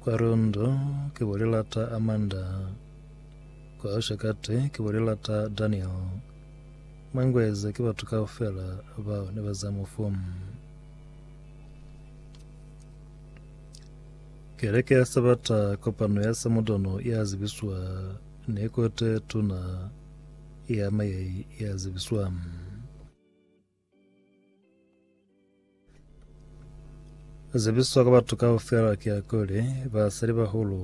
Kwa Rondo ki bo lilata Amanda. Kwa Oshakati ki bo lilata Daniel. Mangweza ki batu kaufela bao ne ba za mufu. Keleke ya Sabata kopano ya Samudono ya zibiswa ni kote tuna ya mayai ya zibiswa. Zebiswa ka batu kaufela ki ya kuli, basalibahulu,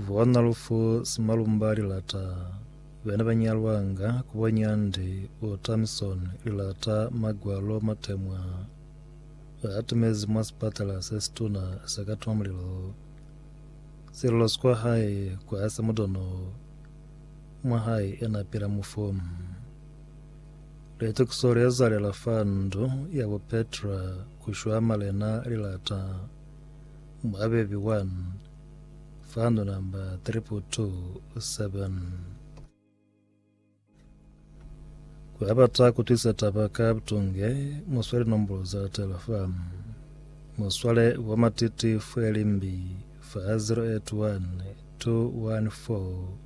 bona lufu simalumba lilata bena banyalwanga ku bonya ndi u Tamison lilata magwalo matemwa atimezi mwa sipatala sesituna sa ka twa mulilo. Sililo sikwa hae kwasa mudono mwa hae ena pila mufu. Litekiso le zalela fa ndu ya bo Petra ku shwa malena li lata mwabebi 1 fa ndu namba 3227. Ku ya bata ku twisa taba ka butunge, mu swale nombolo za latela fa. Mu swale bo matiti fweli mbi fa 081 214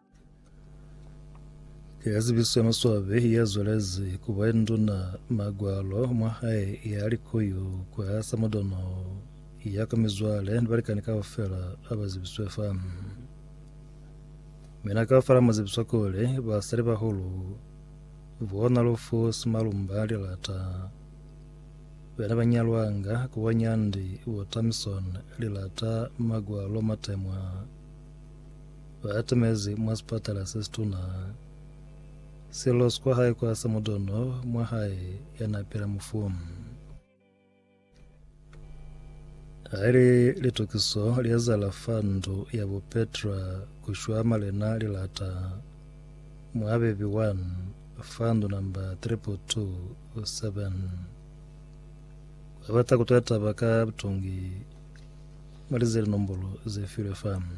Ya zibiswe maswabi ya zwelezi ku ba nduna magwalo mwa hae ya likoyo kwa samudono ya ka mizwale ni balikani kaufela a ba zibiswe fa mina kaufela mu zibiswa kuli basali bahulu bona lufu simalumba lilata bena ba nyalwanga ku ba nyandi botamison lilata magwalo matemwa ba atamezi mwa sipatala se situna, selo sikwa hae kwa sa mudono mwa hae ya na pila mufu. Haili litokiso li ezala fa ndu ya bo Petra ku shwa malena lilata mwa bebi 1 fa ndu namba 3.27. Ba bata ku tata ba ka butongi mwa lize li nombolo ze filwe fano.